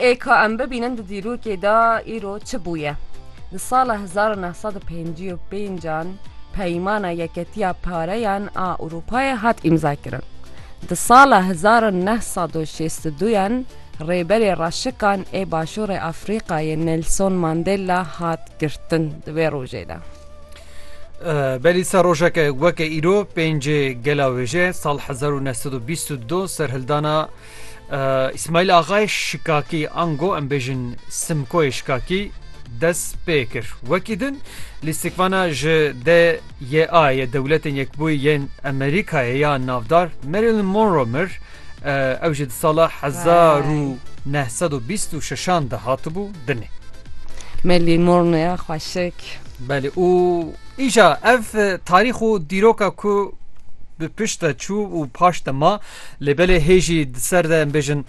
Ê ka em bibînin di dîrokê de îro çi bûye. Di sala hezar û neh sed û pêncî û pênc an Peymana Yeketiya Pareyan a Ewropayê hat îmzakirin. Di sala hezar û neh sed û şêst û du an Rêberê Reşikan ê Başûrê Afrîkayê Nelson Mandela hat girtin di vê rojê de. Belî ser rojeke weke îro pêncê gela wêje sal hezar û neh sed û bîst û du serhildana Îsmaîl Axayê Şikakî ango em bêjin Simkoyê Şikakî dest pê kir. Wekî din lîstikvana ji DYA yê Dewletên Yekbûyî yên Amerîkayê ya navdar Marilyn Monroe mir, Ew jî di sala hezar û neh sed û bîst û şeşan de hatibû dinê. Me lîmorneya xweşik. Belê û îja ev tarîx û dîroka ku bi pişt de çû û paş de ma lê belê hêjî di ser de em bêjin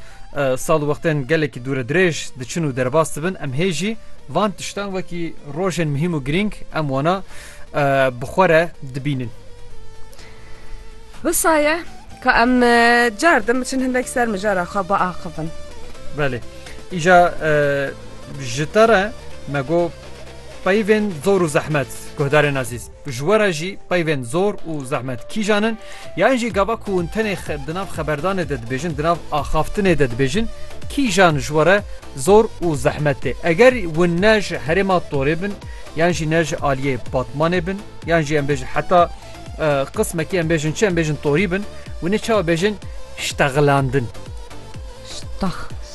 sal û wextên gelekî dûre dirêj diçin û derbas dibin em hêjî van tiştan wekî rojên mihîm û girîng em wana bi xwe re dibînin. Wisa ye ka em cardim biçin hindek ser mijara xwe biaxivin. Belê. Îja ji te re me got peyvên zor û zehmet guhdarên ezîz. Ji we re jî peyvên zor û zehmet kîjan in? Yan jî gava ku hûn tenê di nav xeberdanê de dibêjin, di nav axaftinê de dibêjin kîjan ji we re zor û zehmet tê? Eger hûn ne ji herêma Torê bin, yan jî ne ji aliyê Batmanê bin, yan jî em bêjin heta Qismekî em bêjin çi em bêjin torî bin û nê çawa bêjin ştexilandin.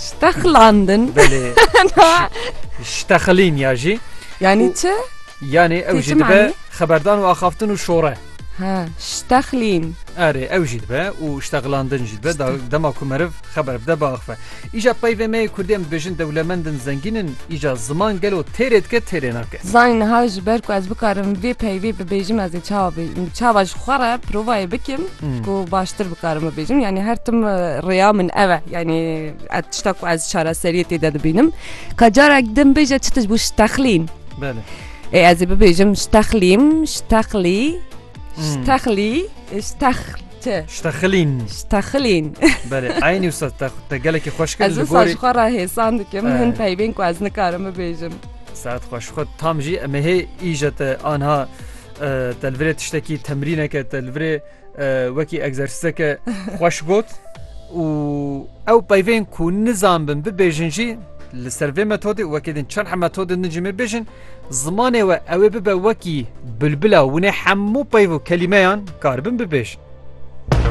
Ştexilandin Ştexilîn ya jî yanî çi? Yanê ew jî dibe xeberdan û axaftin û şore. Ştexlîn Erê ew jî dibe û ştexilandin jî dibe dema ku meriv xeber bide biaxife. Îja peyvê me yê kurdê em dibêjin dewlemend in, zengîn in, îja ziman gelo têrê dike têrê nake. Zanî niha ji ber ku ez bikarim vê peyvê bibêjim ez ê çawa bê çawa ji xwe re provayê bikim ku baştir bikarim bibêjim yanî her tim rêya min ev e yanî ez tişta ku ez çareseriyê tê de dibînim ka carek din bêje çi tişt bû ji texlîn Belê. Ê ez ê bibêjim ji texlîm ji texlî ji texlî ji texl. Ti. Ştexilîn. Ştexilîn. Belê, eynî wisa te, te gelekî xweş kir Ez li wisa gorî. ji xwe re hêsan dikim Eh. hin peyvên ku ez nikarim bibêjim. Saet xweş xwe tam jî em ê hê îje te anha eh, te li virê tiştekî temrîneke te li virê eh, wekî egzersîzeke xweş got û ew peyvên ku nizanbin bibêjin jî li ser vê metodê û wekî din çend metodên din jî me bêjin Zimanê we ew ê bibe wekî bulbula winê hemû peyv û kelîmeyan karibin bibêjin.